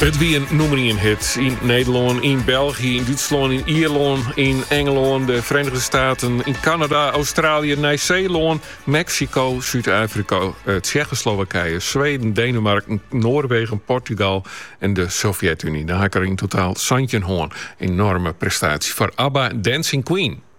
It wie in nûmer ien hit yn Nederlân, yn België, yn Dútslân, yn Ierlân, yn Engelân, de Verenigde Staten, yn Kanada, Australië, Nij-Seelân, Meksiko, Súd-Afrika, eh, Tsjechoslowakije, Sweden, Denemarken, Noarwegen, Portugal en de Sovjet-Unie. Dat ha 'k der yn totaal santjin hân. Enorme prestatie foar ABBA Dancing Queen.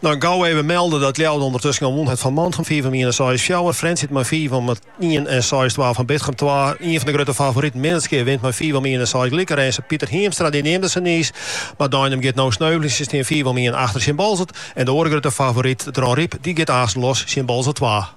No gau even melden dat Ljouwert ûndertusken al wûn hat fan Mantgum fiif om ien en seis fjouwer. Frjentsjer it mei fiif om ien en seis twa fan Bitgum twa. Ien fan de grutte favoriten Minnertsgea wint mei fiif om ien en seis lyk Rinze. Piter Hiemstra dy neamde se niis, mar Deinum giet no sneuvelje. Se stean fiif om ien achter tsjin Boalsert en de oare grutte favoryt Dronryp dy giet aanst los tsjin Boalsert twa.